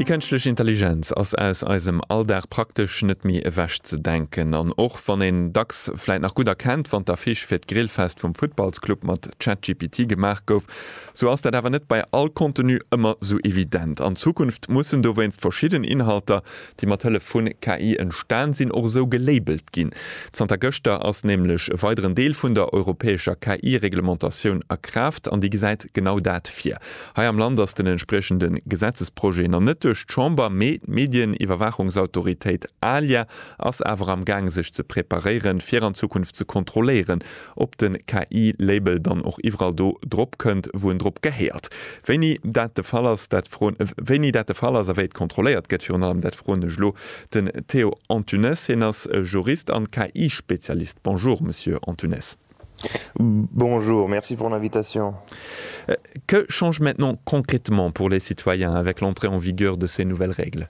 Déi kënschtlech Intelligenz ass aus eisem Alldag praktesch net méi ewech ze denken. An och wann een dacks vläit nach gutt erkennt, wann d'Affiche fir d'Grillfest vum Futtballsclub mat ChatGPT gemaach gouf, sou ass dat awer net bei all Contenu ëmmer sou evident. An Zukunft mussen dowéinst verschidden Inhalter déi mat Hëllef vu KI entstan sinn, och esou gelabelt ginn. Zanter gëschter ass nämlech e weideren Deel vun der europäescher KI-Reglementatioun a Kraaft an déi gesäit genau dat vir. Hei am Land ass den entspriechende Gesetzesprojet nach net duerch d'Chamber, mee d'Medieniwwerwaachungsautoritéit ALIA ass awer am Gaang sech ze preparéieren, fir an Zukunft ze kontrolléieren, ob de KI-Label dann och iwwerall do drop kënnt, wou en drop gehéiert. Wéini dat de Fall ass, dat froen, wéini dat de Fall ass a wéi et kontrolléiert gëtt, virun allem, dat froen ech elo den Théo Antunes. Hien ass Jurist an KI-Spezialist. Bonjour, Monsieur Antunes. Bonjour, merci pour l'invitation. Que change maintenant concrètement pour les citoyens avec l'entrée en vigueur de ces nouvelles règles?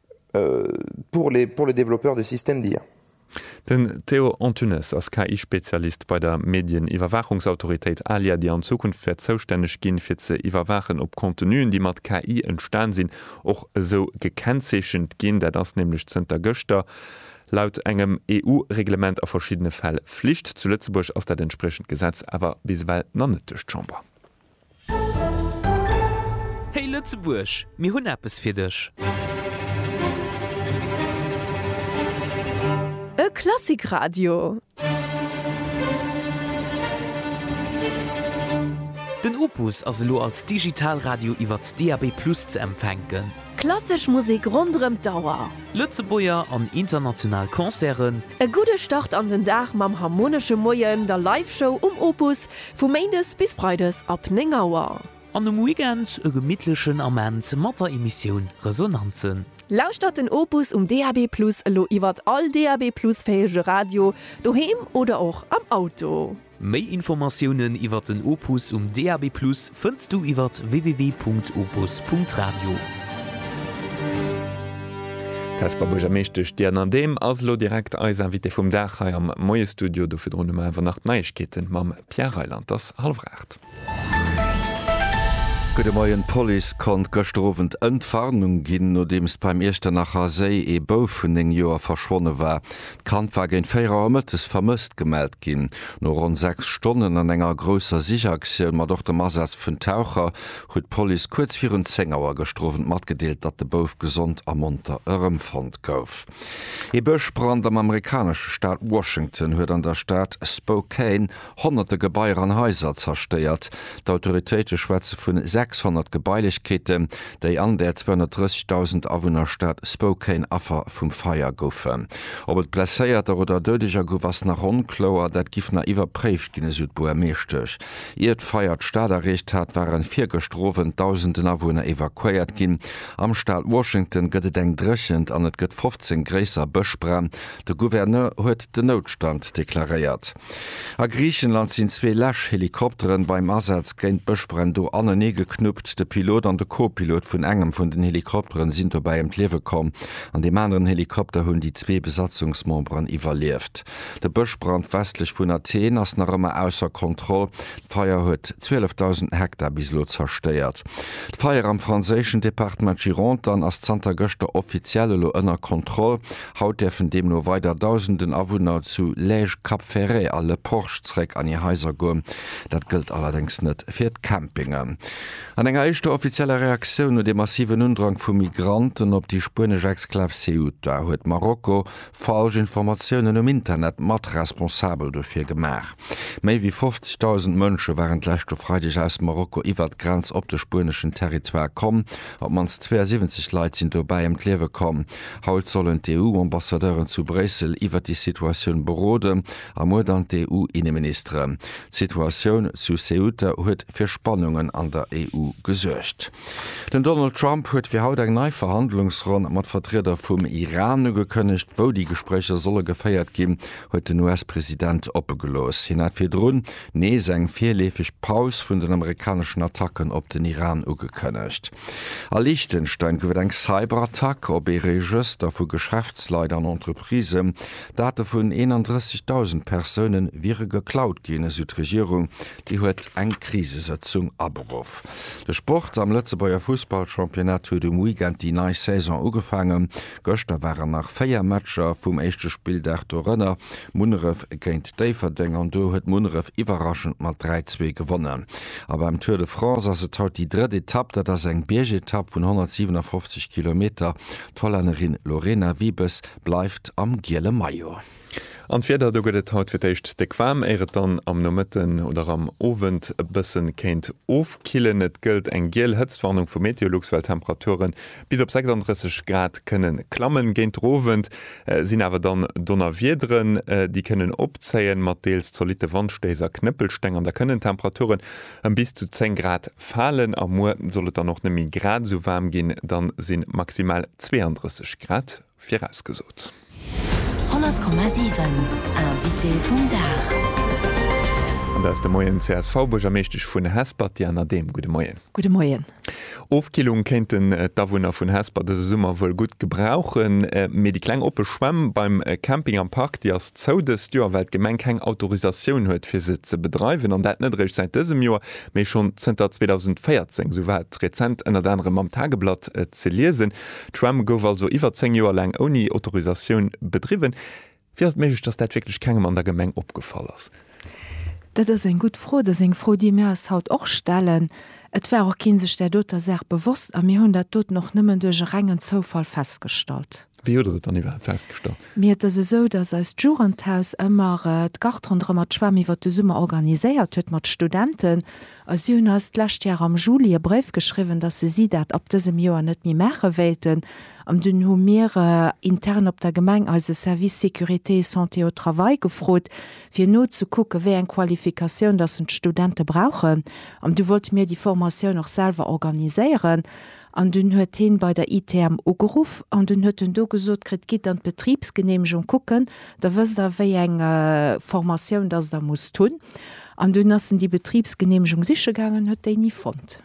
pour les pour les développeurs de systèmes d'IA. Den Théo Antunes ass KI-Spezialist bei der Medieniwwerwaachungsautoritéit ALIA, déi an Zukunft wäert zoustänneg ginn, fir ze iwwerwaachen, ob Contenuen, déi mat KI entstan sinn, och esou gekennzeechent ginn. Dat ass nämlech zënter gëschter laut engem EU-Reglement a verschiddene Fäll Flicht. Zu Lëtzebuerg ass dat entspriechend Gesetz awer bis ewell nach net duerch d'Chamber. Hey Lëtzebuerg, mir hunn eppes fir dech! E Klassikradio! Den Opus ass elo als Digitalradio iwwert DAB+ ze empfänken. Klassesch Musek ronderëm d'Auer. Lëtzebuerger an international Concerten. E gudde Start an den Dag mam Harmonesche Moien, der Live-Show um Opus, Vu Méindes bis Freides ab 9 Auer. An um Weekend e gemittlechen Ament mat der Emissioun Resonanzen. Lauschtert den Opus um DAB+ elo iwwert all DAB+ fähege Radio, doheem oder och am Auto. Méi Informatiounen iwwert den Opus um DAB+ fënns du iwwert www.opus.radio. D'Hesper Buergermeeschtesch Diana Dehm ass elo direkt eis Invitée vum Dag hei am Moiesstudio. Do virdrun hu mer awer nach d'Neiegkeete mam Pierre Reyland. Et ass hallef aacht. Gudde Moien, D'Police konnt gëschter Owend Entwarnung ginn, nodeems beim Iechternacher Séi ee Bouf vun 9 Joer verschwonne war. D'Kand war géint 4 Auer mëttes vermësst gemellt ginn. No ronn 6 Stonnen an enger grousser Sichaktioun mat och dem Asaz vun Taucher huet d'Police kuerz virun 10 Auer gestrowend matgedeelt, datt de Bouf gesond a monter erëmfonnt gouf. Ee Bëschbrand am amerikanesche Staat Washington huet an der Stad Spokane honnerte Gebaier an Haiser zerstéiert. D'Autoritéite schwätze vun 600 Gebailechkeeten, déi an der 230.000 Awunner Stad Spokane Affer vum Feier goufen. Ob et Blesséierter oder Doudeger gouf, ass nach onkloer. Dat giff nach iwwerpréift ginn, esou d'Buermeeschtesch. Ier d'Feier d'Stad erreecht hat, waren virgëschter Owend Dausenden Awunner evakuéiert ginn. Am Staat Washington gëtt et eng Dréchent an et gëtt 15 gréisser Bëschbränn. De Gouverneur huet den Noutstand deklaréiert. A Griichenland sinn zwee Läschhelikopteren beim Asaz géint d'Bëschbränn do anenee geknuppt. De Pilot an de Co-Pilot vun engem vun den Helikopteren sinn dobäi ëm d'Liewe komm. An deem aneren Helikopter hunn déi zwee Besatzungsmemberen iwwerlieft. De Bëschbrand westlech vun Athen ass nach ëmmer ausser Kontroll. D'Feier huet 12.000 Hektar bis elo zerstéiert. D'Feier am franséischen Departement Gironde dann ass zanter gëschter offiziell elo ënner Kontroll. Haut däerfen deemno weider Dausenden Awunner zu Lège, Cap Ferret a Le Porch zeréck an hir Haiser goen. Dat gëllt allerdéngs net fir d'Campingen. An enger éischter offizieller Reaktioun no dem massiven Undrang vu Migranten op déi spuenesch Exklav Ceuta huet Marokko falsch Informatiounen um Internet mat responsabel dofir gemaach. Méi wéi 50.000 Mënsche waren d'leschte Freideg aus Marokko iwwert d'Grenz op de spueneschen Territoire komm. Op d'mannst 72 Leit sinn dobäi ëm d'Liewe komm. Haut sollen d'EU-Ambassadeuren zu Bréissel iwwert déi Situatioun beroden a muer dann d'EU-Inneministeren. D'Situatioun zu Ceuta huet fir Spannungen an der EU gesuergt. Den Donald Trump huet fir haut eng nei Verhandlungsronn mat Vertrieder vum Iran ugekënnegt. Wou déi Gespréicher solle geféiert ginn, huet den US-President oppe gelooss. Hien hat virdrun nees eng virleefeg Paus vun den amerikaneschen Attacken op den Iran ugekënnegt. A Liechtenstein gouf et eng Cyberattack op ee Regëster vu Geschäftsleit an Entreprisen. Date vun 31.000 Persoune wiere geklaut ginn, esou d'Regierung. Déi huet eng Krisesëtzung aberuff. De Sport am Lëtzebuerger Fussballchampionnat huet um Weekend déi nei Saison ugefaangen. Gëschter waren nach 4 Matcher vum éischte Spilldag, dorënner Munneref géint Déifferdeng an do huet Munneref iwwerraschend mat 3, 2 gewonnen. A beim Tour de France ass et haut déi drëtt Etapp. Dat ass eng Biergetapp vun 157 Kilometer. D'Hollännerin Lorena Wiebes bleift am giele Maillot. An d'Wieder, do gëtt et haut fir d'éischt déck waarm, éier et dann am Nomëtten oder am Owend e bëssen kéint ofkillen. Et gëllt eng giel Hëtztwarnung vu Meteolux, well d'Temperature bis op 36 Grad kënnen klammen. Géint de Owend sinn awer dann Donnerwiederen, déi kënnen opzéien, mat deels zolitte Wandstéiss a Knëppelsteng. An da kënnen d'Temperaturen ëm bis zu 10 Grad falen. A muer soll et dann och net méi grad esou waarm ginn, da sinn maximal 32 Grad Virausgesot. 100,7 Invité vum Dag. An dat ass de Moien d'CSV-Buergermeeschtesch vun Hesper, d'Diana Dehm. Gudde Moien. Gudde Moien. Ofkillung kéinten d'Awunner vun Hesper dëse Summer wuel gutt gebrauchen, mee déi kleng oppe Schwämm beim Camping am Park, déi ass zou dëst Joer, well d'Gemeng keng Autorisatioun huet, fir se ze bedreiwen. An dat net eréischt säit dësem Joer, mee schonn zënter 2014. Esou war et rezent ënnert anerem am Tageblatt ze liesen. D'Schwämm gouf also iwwer 10 Joer laang ouni Autorisatioun bedriwwen. Wéi ass et méiglech, dass dat wierklech kengem an der Gemeng opgefall ass? Dat ass eng gutt Fro. Dat ass eng Fro, déi mir eis haut och stellen. Et war och kee sech där doter Saach bewosst a mir hunn dat doten och nëmmen duerch e rengen Zoufall festgestallt. Wéi hutt der dat dann iwwerhaapt festgestallt? Mir, et ass esou, dass eist Jugendhaus ëmmer d'Gart ronderëmmer d'Schwämm iwwert de Summer organiséiert huet mat Studenten. A si hunn eis d'lescht Jar am Juli e Bréif geschriwwen, dass se si dat ab dësem Joer net méi maache wéilten. An dunn hu mir intern op der Gemeng eise Service sécurité et santé au travail gefrot, fir nozekucken, wéi eng Qualifikatioun dass en d'Studente brauchen. An du wollte mir déi Formatioun och selwer organiséieren. An dunn huet hien bei der ITM ugeruff an dunn huet en do gesot kritt, Gitt an d'Betribsgeneemegung kucken, da wësst der, wéi eng Formatioun dass der musst hunn. An dunn ass en déi Betribsgeneemegung siche gaangen, huet déi ni fonnt.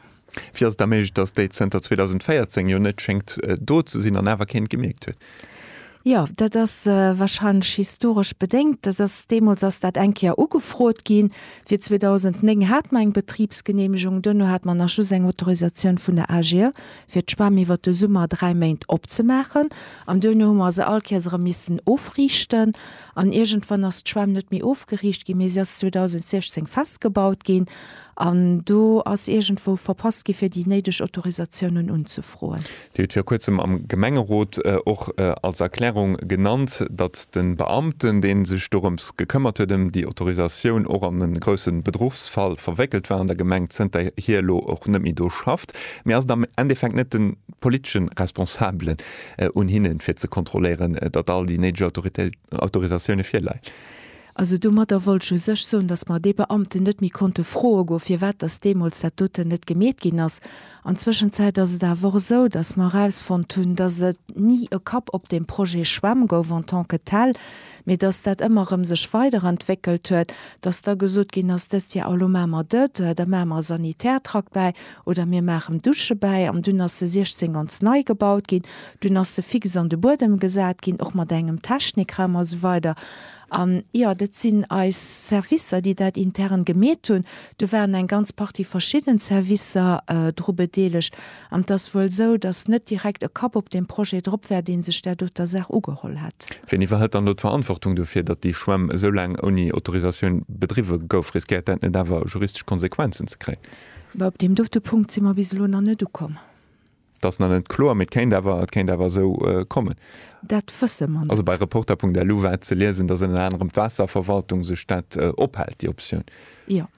Wéi ass et da méiglech, datt déi zënter 2014 jo net schéngt do ze sinn an awer keen gemierkt huet? Jo, dat ass warscheinlech historesch bedéngt. Dat ass, deemools ass dat eng Kéier ugefrot ginn. Fir 2009 hat mer eng Betribsgeneemegung, duerno hat mer nach just eng Autorisatioun vun der AG fir d'Schwämm iwwer de Summer dräi Méint opzemaachen. An duerno hu mer se all Kéiers erëm missen ofriichten. An iergendwann ass d'Schwämm net méi ofgeriicht ginn, mee si ass 2016 festgebaut ginn. An do ass iergendwou verpasst ginn, fir déi néideg Autorisatiounen unzefroen. Dir hutt viru Kuerzem am Gemengerot och als Erklärung genannt, datt de Beamten, dee sech dorëms gekëmmert huet, ëm déi Autorisatioun, och an e grousse Bedruchsfall verwéckelt war an der Gemeng, zënterhier elo och net méi do schafft. Mee ass et am Endeffekt net de politesche Responsabelen, un hinnen, fir ze kontrolléieren, datt all déi néideg Autorisatioune virleien. Also domadder wollt ech u sech soen, datt mer dee Beamten net méi konnte froe goen, firwat datt deemools dat doten net gemeet ginn ass. An Zwëschenzäit ass et awer och esou, datt mer erausfonnt hunn, datt et ni e Kapp op deem Projet Schwämm gouf en tant que tel, Mee dass dat ëmmer erëm sech weiderentwéckelt huet, dass da gesot ginn ass, dëst Jar, oh lo maache mer dat, da maache mer e Sanitärtrakt bäi oder mir maachen Douche bäi. An dunn ass se 16 ganz nei gebaut ginn, dunn ass se fix an de Buedem gesat ginn, och mat engem Technikraum a sou weider. An jo, dat sinn eis Servicer, déi dat intern gemeet hunn. Do waren eng ganz Partie verschidden Servicer dru bedeelegt. An et ass wuel esou, datt net direkt e Kapp op deem Projet drop war, dee sech där doter Saach ugeholl hätt. Wien iwwerhëlt dann elo d'Verantwortung dofir, datt déi Schwämm esou laang ouni Autorisatioun bedriwwe gouf? Riskéiert dat net awer juristesch Konsequenzen ze kréien? Bah, op deem dote Punkt si mer bis elo nach net ukomm. Et ass nach net kloer, mee et kéint awer, et kéint awer esou kommen. Dat wësse mer net. Also bei reporter.lu war ze liesen, datt ënner anerem d'Waasserverwaltung sech dat ophält, déi Optioun. Jo,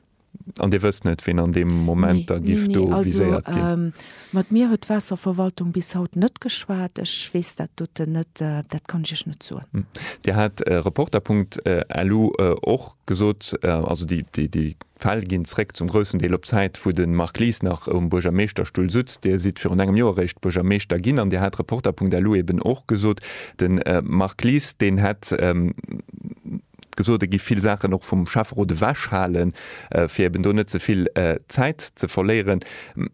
An Dir wësst net, wien an deem Moment da giff do viséiert ginn? Nee, nee, nee, also mat mir huet d'Waasserverwaltung bis haut net geschwat. Ech weess dat doten net, dat kann ech Iech net soen. Dir hat Reporter Punkt elu och gesot, also déi Fäll ginn zréck zum groussen Deel op d'Zäit, wou de Marc Lies nach um Buergermeeschterstull sutzt. Dir sidd virun engem Joer eréischt Buergermeeschter ginn an Dir hat Reporter Punkt elu eben och gesot, de Marc Lies, deen hätt, gesot, e giff vill Saachen och vum Schäfferot ewechhalen, fir eben do net ze vill Zäit ze verléieren.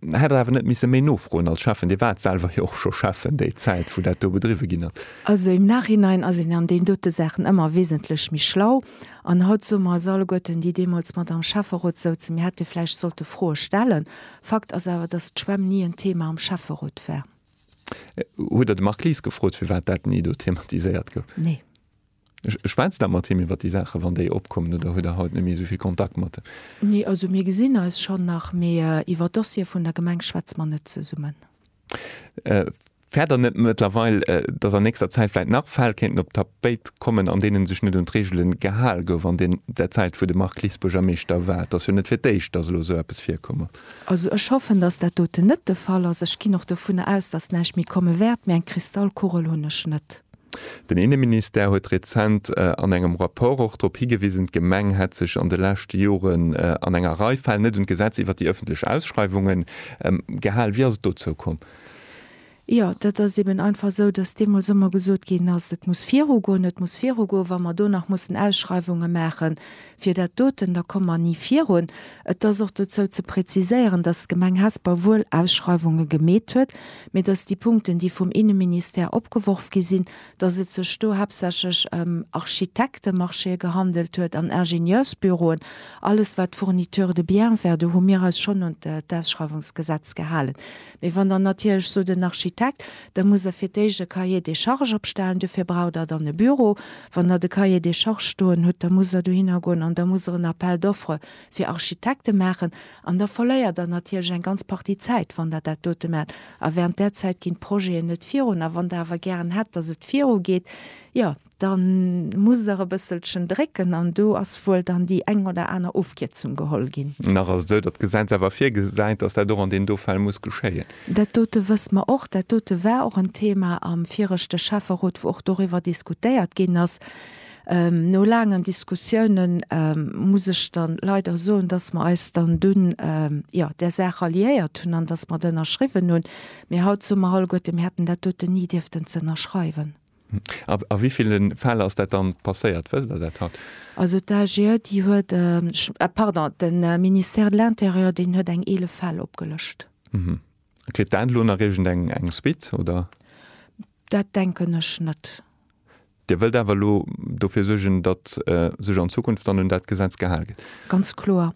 Hätt Der awer net misse méi nofroen als Schäffen? Dir waart selwer jo och scho Schäffen déi Zäit, wou dat do bedriwwe ginn ass. Also im Nachhinein ass een an deenen dote Saachen ëmmer wesentlech méi schlau. An haut soe mer eis alleguerten, déi deemools mat am Schäfferot souzen, mir hätte vläicht sollte Froe stellen. Fakt ass awer, dass d'Schwämm ni en Thema am Schäfferot war. Hutt Der de Marc Lies gefrot, firwat dat ni do thematiséiert gouf? Nee. Schwätzt der mat him iwwer déi Saachen, wann déi opkommen, oder huet Der haut net méi esou vill Kontakt mat him? Nee, also mir gesinn eis schonn nach, mee iwwer Dossiere vun der Gemeng schwätze mer net zesummen. Fäert Der net mëttlerweil, dass an nächster Zäit vläicht nach Fäll kéinten op d'Tapéit kommen, an deenen sech net un d'Reegele gehal gouf an der Zäit, wou de Marc Lies Buergermeeschter war? Et ass jo net fir d'éischt, dass elo esou eppes virkomm ass. Also ech hoffen, dass dat doten net de Fall ass. Ech ginn och dovunner aus, dass näischt méi komme wäert, mee eng Kristallkugel hunn ech net. Den Inneministère huet rezent an engem Rapport och drop higewisen, d'Gemeng hätt sech an de leschte Joren an enger Rei Fäll net un d'Gesetz iwwert déi ëffentlech Ausschreiwungen gehal. Wéi ass et dozou komm? Jo, dat ass eben einfach esou, dass deemools ëmmer gesot ginn ass, et muss virugoen, et muss virugoen, wa mer do nach mussen Ausschreiwunge maachen, Fir dat doten, da komme mer ni virun. Et ass och dozou ze präziséieren, dass d'Gemeng Hesper wuel Ausschreiwunge gemeet huet, mee dass déi Punkten, déi vum Inneministère opgeworf gi sinn, dass et sech do haaptsächlech ëm Architektemarchéë gehandelt huet an Ingenieursbüroen. Alles, wat Fourniture de biens war, do hu mir eis schonn un d'Ausschreiwungsgesetz gehalen. Mee wann dann natierlech sot en Architekt, Da musst Der fir d'éischt e Cahier des charges opstellen. Dofir braucht Der dann e Büro. Wann Der de Cahier des charges stoen hutt, da musst Der dohinner goen an da musst Der en Appel d'offres fir Architekte maachen. An da verléiert Der natierlech eng ganz Partie Zäit, wann Der dat dote maacht. A während där Zäit ginn d'Projeten net virun. A wann Der awer gären hätt, dass et virugeet, jo, Dann muss der e bësselchen drécken an do ass wuel dann déi eng oder aner Ofkierzung geholl ginn. Nach ass et esou, datt d'Gesetz awer virgesäit, datt dat och an deem do Fäll muss geschéien. Dat dote wësse mer och. Dat dote war och en Thema am viregte Schäfferot, wou och doriwwer diskutéiert ginn ass. No laangen Diskussiounen muss ech dann leider soen, datt mer eis dann dunn, jo, där Saach ralliéiert hunn an datt mer et ënnerschriwwen hunn. Mee haut soe mer alleguerten, mir hätten dat doten ni dierften z'ënnerschreiwen. A wéi ville Fäll ass dat dann passéiert? Wësst Der dat haut? Also d'AGE, déi huet, pardon, de Ministère de l'Intérieur, deen huet eng 11 Fäll opgelëscht. Kritt dat elo nach iergendeng Suite, oder? Dat denken ech net. Dir wëllt awer elo dofir suergen, datt sech an Zukunft dann un dat Gesetz gehal gëtt? Ganz kloer.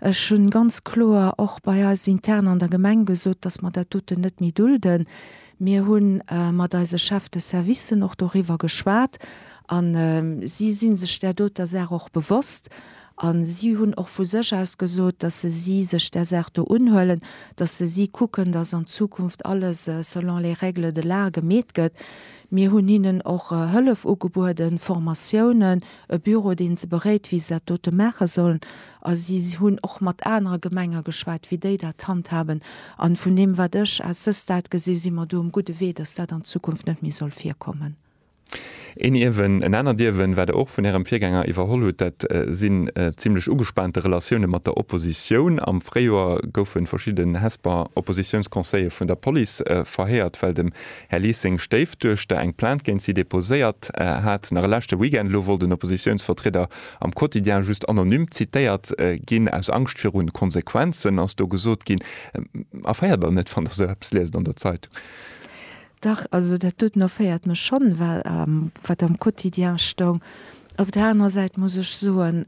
Ech hu ganz kloer och bei eis intern an der Gemeng gesot, datt mer dat doten net méi dulden. Mir hu mat eise Chefs de servicen och doriwwer geschwat a si si sech där doter Saach och bewosst. A si hunn och vu sech aus gesot, dass se si sech där Saach do unhuelen, dass se si kucken, dass an Zukunft alles selon les règles de l'art gemeet gëtt. Mir hunn hinnen och Hëllef ugebueden, Formatiounen, e Büro, deen se beréit, wéi se dat dote maache sollen. A si hunn och mat anere Gemenge geschwat, wéi déi dat handhaben. A vun deem, wat ech à ce stade gesinn, si mer do um gudde Wee, dass dat an Zukunft net méi soll virkommen. Een Ierwen, en anert Ierwen, wat Der och vun Ärem Virgänger iwwerholl hutt, dat sinn zimlech ugespaante Relatioune mat der Oppositioun. Am Fréijoer goufe verschidden Hesper Oppositiounsconseiller vun der Police verhéiert, well dem Här Lies seng Stéifduechter eng Plainte géint si deposéiert hat. Nach e leschte Weekend elo wollt en Oppositiounsvertrieder am Quotidien just anonym zitéiert ginn, aus Angscht viru Konsequenzen, ass do gesot ginn. Erféiert der net, wann der esou eppes liest an der Zeitung? Dach, also dat doten erféiert mech schonn, well wat am Quotidien stoung. Op der anerer Säit muss ech soen,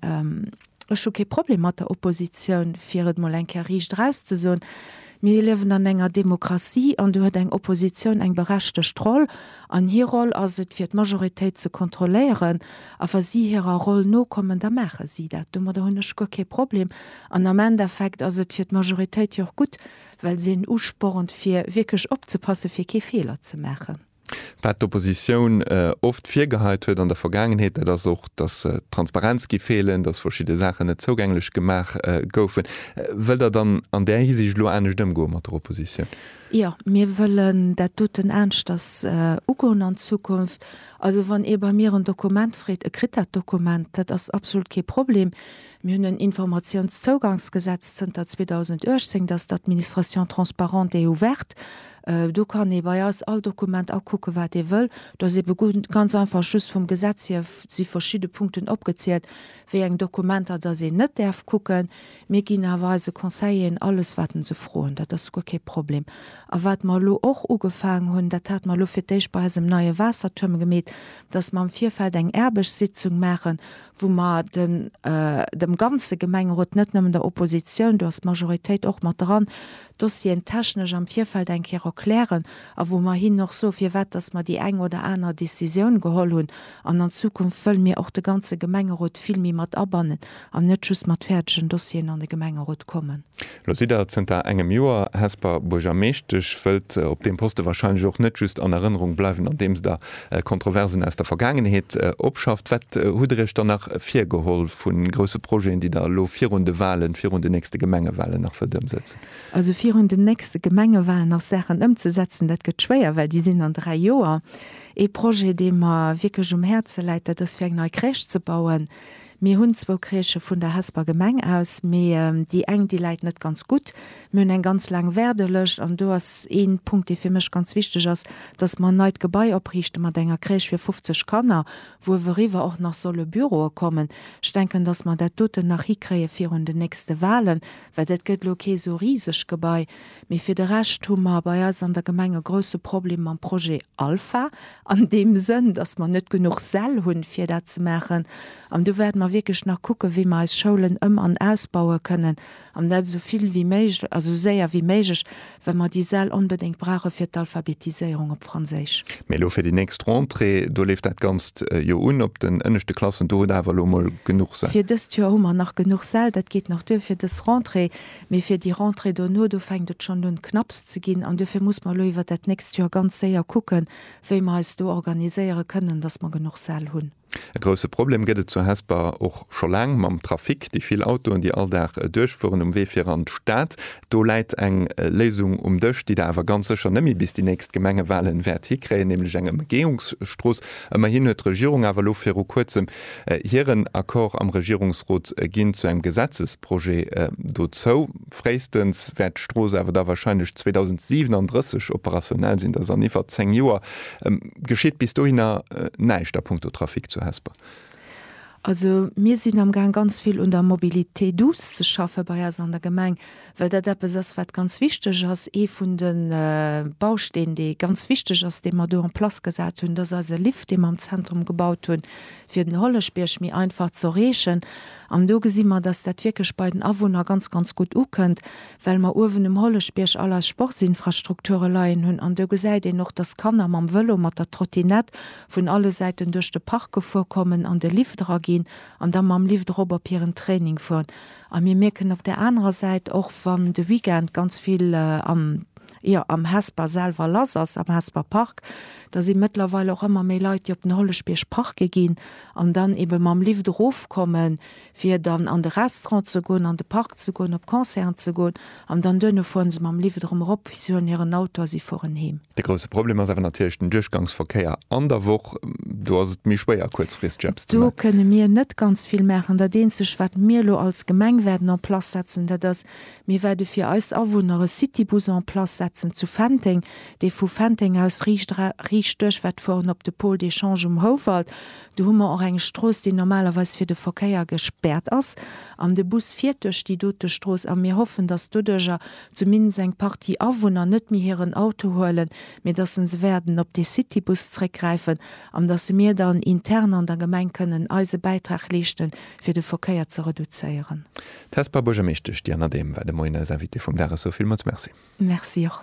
ech hu kee Problem mat der Oppositioun, fir et mol eng Kéier riicht eraus ze soen. Mir liewen an enger Demokratie an do huet eng Oppositioun eng berechtegt Roll. An hir Roll ass et, fir d'Majoritéit ze kontrolléieren. A wa si hirer Roll nokommen, da maache si dat. Domadder hunn ech guer kee Problem. An am Endeffekt ass et fir d'Majoritéit jo och gutt, well se en uspornt, fir wierklech opzepassen, fir kee Feeler ze maachen. Wat d'Oppositioun oft virgeheit huet an der Vergaangenheet, dat ass och, dass d'Transparenz géif feelen, dass verschidde Saachen net zougänglech gemaach goufen. Wëllt Der dann an där Hisiicht elo anescht ëmgoe mat der Oppositioun? Jo, mir wëllen dat doten aneschters ugoen an Zukunft. Also wann ee bei mir en Dokument freet, e kritt dat Dokument, dat ass absolut kee Problem. Mir hunn en Informatiounszougangsgesetz zënter 2018, dat ass d'Administration transparente et ouverte. Do kann ee bei eis all Dokument akucken, wat ee wëll. Do ass eebe ganz einfach just vum Gesetz hier si verschidde Punkten opgezielt, wéi eng Dokumenter datt een net däerf kucken. Mir ginn awer eise Conseilleren alles, wat en se froen. Dat ass guer kee Problem. A wat mer elo och ugefaangen hunn, dat hate mer elo fir d'éischt bei eisem neie Waassertuerm gemeet, datt mer am Virfeld eng Aarbechtssitzung maachen, wou mer den dem ganze Gemengerot, net nëmmen der Oppositioun, do ass d'Majoritéit och mat dran, Dossieren technesch am Virfeld eng Kéier erklären a wou mer hinnen och soe firwat dass mer déi eng oder aner Décisioun geholl hunn. An an Zukunft wëlle mir och de ganze Gemengerot vill méi mat abannen an net just mat fäerdegen Dossieren an de Gemengerot kommen. Lo sidd Der zënter engem Joer Hesper Buergermeeschtesch, wëllt op deem Poste wahrscheinlech och net just an Erënnerung bleiwen andeems Der Kontroversen aus der Vergaangenheet opschafft. Wat hutt Der Iech dann nach virgeholl vu grousse Projeten, déi Der elo virun de Wahlen, virun den nächste Gemengewahlen nach wëllt ëmsetzen? Also virun den nächste Gemengewahlen ass Saachen ëmzesetzen, dat gëtt schwéier, well déi sinn an dräi Joer. Ee Projet, dee mer wierklech um Häerze läit, dat ass fir eng nei Crèche ze bauen, Mir hunn zwou Crèchë vun der Hesper Gemeng aus, mee déi eng, déi läit net ganz gutt. Mir hunn eng ganz laang Wäerdelëscht an do ass ee Punkt, dee fir mech ganz wichteg ass, dass mer en neit Gebai opriichte mat enger Crèche fir 50 Kanner, wou iwweriwwer och nach solle Büroe kommen. Ech denken, dass mer dat doten nach hikréie virun den nächste Wahlen, well dat gëtt elo kee sou riseg Gebai. Mee fir de Rescht hu mer bei eis an der Gemeng e grousse Problem mam Projet Alpha, an deem Sënn, dass mer net genuch Säll hunn, fir dat ze maachen. An do wäerte mer wierklech nach kucken, wéi mer eis Schoulen ëm an ausbaue kënnen, an dat esou vill wéi méiglech, also esou séier wéi méiglech, well mer déi Säll onbedéngt brauche fir d'Alphabetiséierung op Franséisch. Mee elo fir déi nächst Rentrée, do leeft dat Ganzt jo un, op den ënneschte Klassen, do hutt Der awer elo emol genuch Säll. Fir dëst Joer hu mer nach genuch Säll, dat geet nach duer fir dës Rentrée. Mee fir déi Rentrée dono, do fänkt et schonn un knapps ze ginn. An duerfir muss mer elo iwwert dat nächst Joer ganz séier kucken, wéi mer eis do organiséiere kënnen, dass mer genuch Säll hunn. E grousse Problem gëtt et zu Hesper och scho laang mam Trafic, déi vill Autoen, déi all Dag duerchfueren um Wee fir an d'Stad. Do läit eng Léisung um Dësch, déi Der awer ganz sécher net méi bis déi nächst Gemengewalen wäert hikréien, nämlech eng Ëmgeeungsstrooss. Ëmmerhin huet d'Regierung awer elo viru Kuerzem Hiren Accord am Regierungsrot ginn zu engem Gesetzesprojet dozou. Fréistens wäert d'Strooss awer da wahrscheinlech 2037 operationell sinn, dat ass an iwwert zéng Joer. Geschitt bis dohinner näischt a punkto Trafic zu Hesper? Also mir sinn amgaang ganz vill un der Mobilité douce ze schaffen bei eis an der Gemeng. well dat eppes ass, wat ganz wichteg ass. Ee vun de Bausteen, dee ganz wichteg ass, dee mer do en place gesat hunn, dat ass eise Lift, dee mer am Zentrum gebaut hunn, fir den Holleschbierg méi einfach ze erreechen. An do gesi mer, dass dat wierklech bei den Awunner ganz, ganz gutt ukënnt, well mer uewen um Holleschbierg all eis Sportsinfrastrukture leien hunn. An do gesäit een och, dass d'Kanner mam Vëlo, mat der Trottinett vun alle Säiten duerch de Park gefuer kommen, an de Lift eraginn an da mam Lift erop op hiren Training fueren. A mir mierken op där anerer Säit, och wann de Weekend ganz vill am, jo, am Hesper selwer lass ass, am Hesper Park, da si mëttlerweil och ëmmer méi Leit, déi op den Holleschbierg parke ginn an dann ebe mam Lift erofkommen, fir dann an de Restaurant ze goen, an de Park ze goen, op Concerten ze goen. An dann duerno fueren se mam Lift erëm erop, si huelen hiren Auto a si fueren heem. De grousse Problem ass awer natierlech den Duerchgangsverkéier an der Woch. Do ass et méi schwéier kuerzfristeg eppes ze maachen. Do kënne mir net ganz vill maachen. Dat eenzegt wat mir elo als Gemeng wäerten en place setzen, dat ass, mir wäerte fir eis Awunner e Citybus en place setzen zu Fenteng, dee vu Fenteng aus riicht duerch wäert fueren op de Pôle d'échange um Houwald, Do hu mer och eng Strooss, déi normalerweis fir de Verkéier gespäert ass, an de Bus fiert duerch déi dote Strooss. A mir hoffen, dass doduercher zumindest eng Partie Awunner net méi hiren Auto huelen, mee dass se se wäerten op dee Citybus zréckgräifen an dass se mir dann intern an der Gemeng kënnen eise Bäitrag leeschte fir de Verkéier ze reduzéieren. D'Hesper Buergermeeschtesch Diane Adehm war de Moien eis Invitée vum Dag. Ech soe villmools Merci. Merci och.